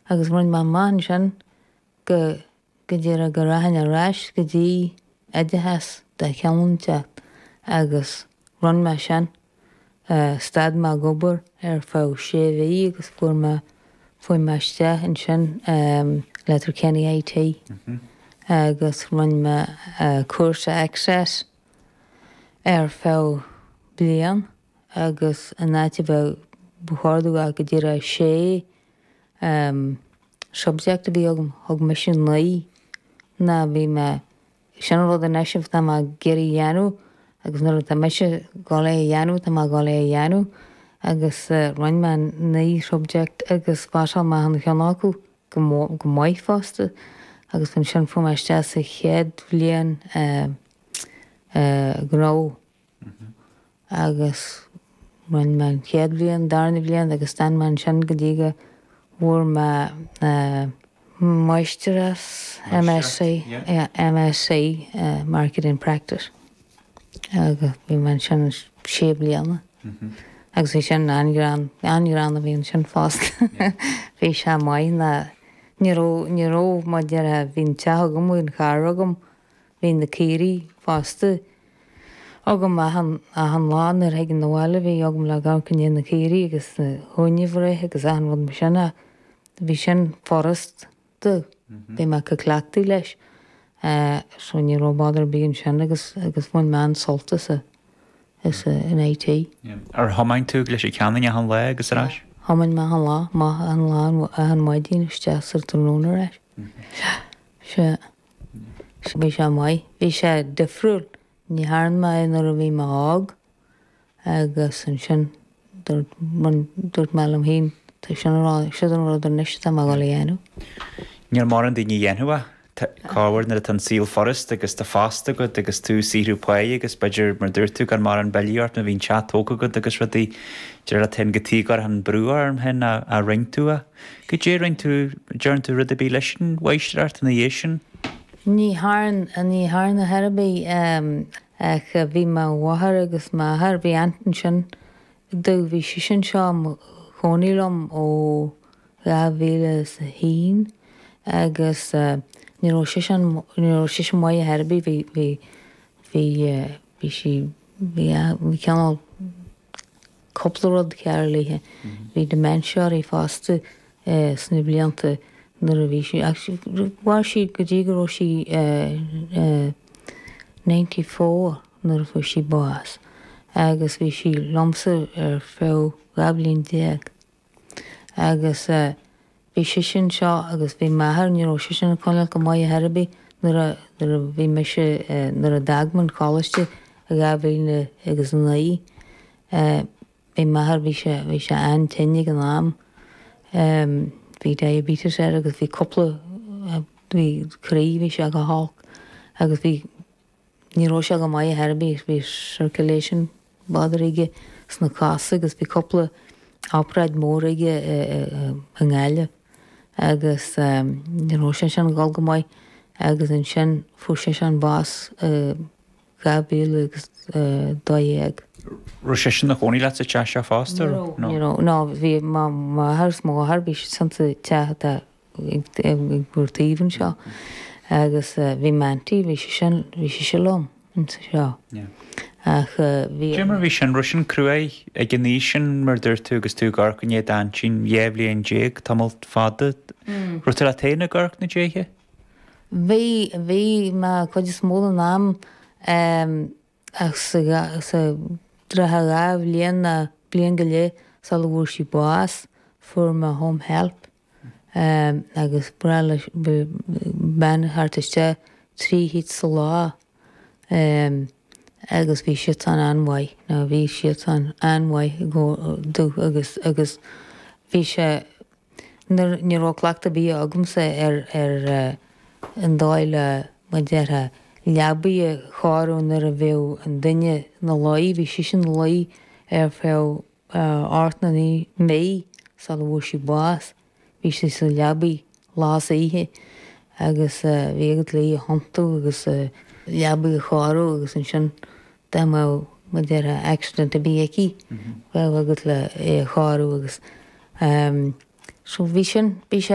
agus rinn mé amach ansin go go díreach go rachainn ar ais go dtí oideachas de chineál inteacht agus rinn mé sin. Stad mé ag obair ar feadh sé mhí agus fuair mé chuaigh mé isteach ansin i Letterkenny IT agus rinn mé cúrsa Access ar feadh bliain agus in áit a bheith ba chóir dó a bheith go díreach 6 subject a bhí agam, thug mise naoi ná bhí mé, sin an rud anois atá mé ag iarraidh a dhéanamh agus nuair atá mise ag dul é a dhéanamh, tá mé ag dul é a dhéanamh agus rinn mé naoi subject agus phasáil mé achan cheann acu go maith fosta agus ansin fuair mé isteach sa chéad bhliain gnó. agus rinn mé an chéad bhliain, darna bhliain agus d'fhan mé ansin go dtí go bhfuair mé máistreacht, MSc, yeah, MSc, Marketing Practice, agus bhí mé ansin sé bliana agus bhí sin an-ghreann, an-ghreann a bhí ansin fosta, bhí sé maith ná, ní raibh, ní raibh, mar a déarfá, bhí an teach agam, bhí an carr agam, Bhí na caoirigh fosta agam achan, achan lá nuair a thiginn na bhaile. Bhí agam le amharc i ndiaidh na caoirigh agus na huain a bhreith agus achan rud mar sin ach bhí sin furast domh, bhí mé cleachtaithe leis. So ní raibh bother ar bith ansin agus, agus bhain mé an-sult as a, as a, an IT. Ar thiomáin tú go Leitir Ceanainn achan lá agus ar ais? Yeah, thiomáin mé achan lá, maith, achan lá, achan mhaidin isteach sa tráthnóna ar ais. Yeah, sea. Bhí sé maith. Bhí sé difriúil. Ní thearn mé é nuair a bhí mé óg agus ansin dúirt, bhuel, dúirt mé liom féin, tá sin an rud, siod an rud anois atá mé a dhul a dhéanamh. Níl mórán daoine a dhéanfadh é. Tá, corruair nuair atá an saol furast agus tá post agat agus tú ag saothrú páighe agus b'fhéidir, mar a dúirt tú, gan morán billí ort nó bhí an teach tógtha agat agus rudaí, de réir a, téann go dtí go raibh an brú orm féin a, a, roinnt uaidh. Goidé a rinn tú, an dtearn tú rud ar bith leis an mháistreacht ina dhiaidh sin. Ní thearn ar chor ar bith ach bhí mo mháthair agus m'athair, bhí aunt ansin domh, bhí sise anseo ina cónaí liom ó 2001 agus ní raibh sise, ní raibh sise maith ar chor ar bith, bhí, bhí, bhí, bhí sí, bhí, bhí cineál, Cúpla rud cearr léithe. Bhí dementia uirthi fosta sna blianta nuair a bhí sí, ach mhair sí go dtí go raibh sí ninety four nuair a fuair sí bás agus bhí sí liomsa ar feadh dhá bhliain déag. Agus bhí sise anseo agus bhí m'athair, ní raibh seisean ag coinneáil go maith ar chor ar bith nuair a, nuair a bhí mise, nuair a d'fhág mé an coláiste i dhá mhíle agus a naoi, bhí m'athair, bhí sé, bhí sé an-tinn ag an am. Bhí diabetes air agus bhí cúpla, bhí croí, bhí sé go holc agus bhí, Ní raibh sé go maith ar chor ar bith, bhí circulation bother aige sna cosa agus bhí cúpla obráid mór aige i nGaillimh agus ní raibh seisean ag dul go maith agus ansin fuair seisean bás i 2012. Raibh seisean ina chónaí leat sa teach seo fosta? Ní raibh, ní raibh, no, bhí m'athair is mo mháthair, bhí siadsan sa teach atá. ag ár dtaobh anseo agus bhí m'aintín, bhí sise, bhí sise liom anseo ach bhí. Cad é mar a bhí sin, raibh sin cruaidh ag an aois sin mar a dúirt tú agus tú ag amharc i ndiaidh d'aintín, dhá bhliain déag, tamall fada. Raibh tú leat féin ag amharc ina diaidh? Bhí, bhí mé cuid is mó den am ach sa, sa trátha dhá bhliain nó bliain go leith sula bhfuair sí bás fuair mé home help. agus ba ghnách le bean a theacht isteach trí chuairt sa lá agus bhí siadsan an-mhaith, nó bhí siadsan an-mhaith go deo agus, agus bhí sé, nuair, ní raibh cleachtadh ar bith agamsa ar, ar an dóigh le, mar a déarfá, leabaidh a chóiriú nuair a bheadh an duine ina luí, bhí sise ina luí ar feadh. Ocht nó naoi mí sula bhfuair sí bás, bhí sí sa leabaidh lá is oíche agus bhí agat le í a thiontú agus a leabaidh a chóiriú agus ansin dá mbeadh, mar a déarfá, accident ar bith aici, bheadh agat le í a chóiriú agus, em, so bhí sin, bhí sé.